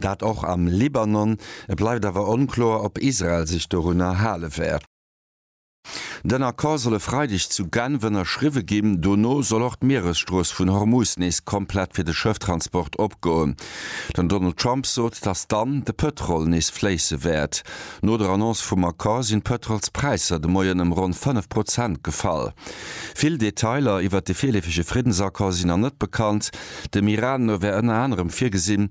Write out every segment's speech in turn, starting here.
Dat och am Libanon. Et bleift awer onkloer, ob Israel sech dorunner hale wäert. Den Accord soll e Freideg zu Genf ënnerschriwwe ginn. Dono soll och d'Mieresstrooss vun Hormuz nees komplett fir de Schëfftransport opgoen. Den Donald Trump sot, datt dann de Pëtrol nees fléisse wäert. No der Annonce vum Accord sinn d'Pëtrolspräisser de Moien ëm ronn 5 Prozent gefall. Vill Detailer iwwert de virleefege Friddensaccord sinn nach net bekannt. Dem Iran no wär ënner anerem virgesinn,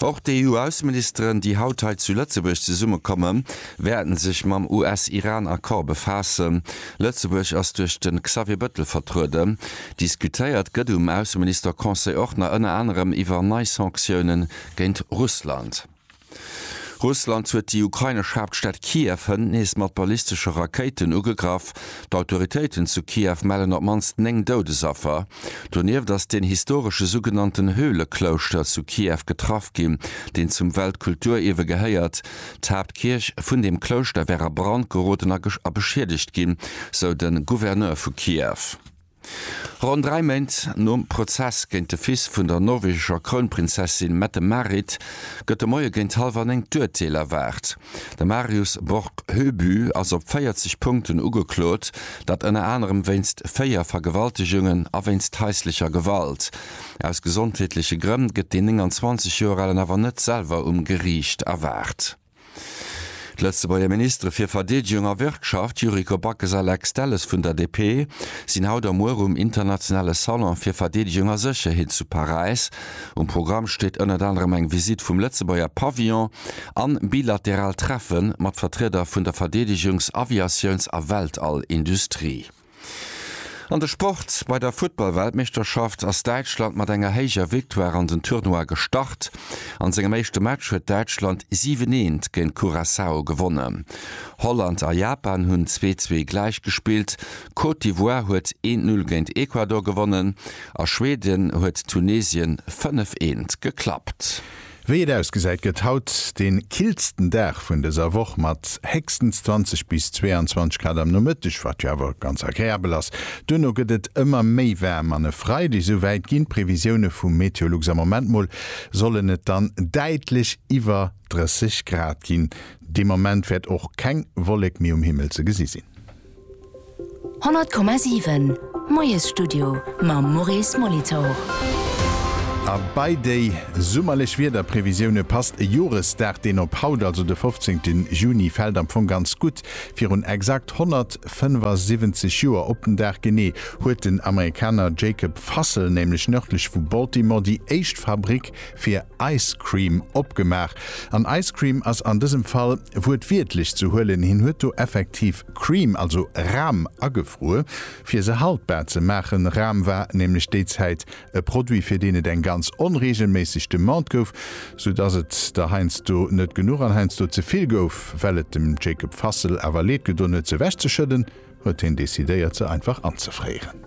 Och d'EU-Ausseministeren, déi haut hei zu Lëtzebuerg zesummekommen, wäerten sech mam US-Iran-Accord befaassen. Lëtzebuerg ass duerch de Xavier Bettel vertrueden. Diskutéiert gëtt um Ausseminister-Conseil och nach ënner anerem iwwer nei Sanktiounen géint Russland. Russland huet déi ukrainesch Haaptstad Kiew hënt nees mat ballistesche Rakéiten ugegraff. D'Autoritéiten zu Kiew mellen op d'mannst 9 Doudesaffer. Donieft ass deen historesche sougenannten Höhleklouschter zu Kiew getraff ginn, deen zum Weltkulturierwe gehéiert. D'Haaptkierch vun deem Klouschter wär a Brand geroden a beschiedegt ginn, sou de Gouverneur vu Kiew. Ronn dräi Méint nom Prozess géint de Fils vun der norwegescher Krounprinzessin Mette-Marit gëtt de Moie géint hallwer néng d'Urteel erwaart. De Marius Borg Høby ass op 40 Punkten ugeklot, dat ënner anerem wéinst véier Vergewaltegungen a wéinst haislecher Gewalt. Aus gesondheetleche Grënn gëtt deen 29 Joer alen awer net selwer um Geriicht erwaart. D'Lëtzebuerger Ministere fir Verdeedegung a Wirtschaft, Yuriko Backes a Lex Delles vun der DP, sinn haut a muer um internationale Salon fir Verdeedegung a Sécherheet zu Paräis. Um Programm steet ënnert anerem eng Visitt vum Lëtzebuerger Pavillon an bilateral Treffe mat Vertrieder vun der Verdeedegungs-, Aviatiouns a Weltall-Industrie. An de Sport, Bei der Futtball-Weltmeeschterschaft ass Däitschland mat enger héijer Victoire an den Tournoi gestart. An sengem éischte Match huet Däitschland 7, eent géint Curaçao gewonnen. Holland a Japan hunn 2, zwee gläich gespillt. Côte d'Ivoire huet 1, null géint Ecuador gewonnen a Schweden huet Tunesien 5, eent geklappt. Wéi et ausgesäit gëtt haut den killsten Dag vun dëser Woch mat héchstens 20 bis 22 Grad am Nomëtteg, wat jo awer ganz agreabel ass. Duerno gëtt et ëmmer méi waarm an e Freide, esou wäit ginn d'Previsioune vu Meteolux, am Moment mol sollen et dann däitlech iwwer 30 Grad ginn. Dee Moment wäert och keng Wollek méi um Himmel ze gesi sinn. 100,7 Moiesstudio mam Maurice Molitor. A bei déi summerlech Wiederprevisioune passt e Joresdag, deen op haut, also de 15 Juni fält, am Fong ganz gutt. Virun exakt 175 Joer, op den Dag genee, huet den Amerikaner Jacob Fussell nämlech nërdlech vu Baltimore déi éischt Fabrik, fir ice cream opgemaach, an ice cream ass an dësem Fall wuertwiertlech ze huelen, hien huet do effektiv cream, also Ram, agefruer, fir se haltbar ze maachen. Ram war nämlech déi Zäit e Produit, fir deen et eng ganz onreegelméisseg Demande gouf, sou dass et der heiansdo net genuch an heiansdo ze vill gouf. Well et dem Jacob Fassel awer leed gedoen huet, se ewechzeschëdden, huet hien decidéiert, se einfach anzefréieren.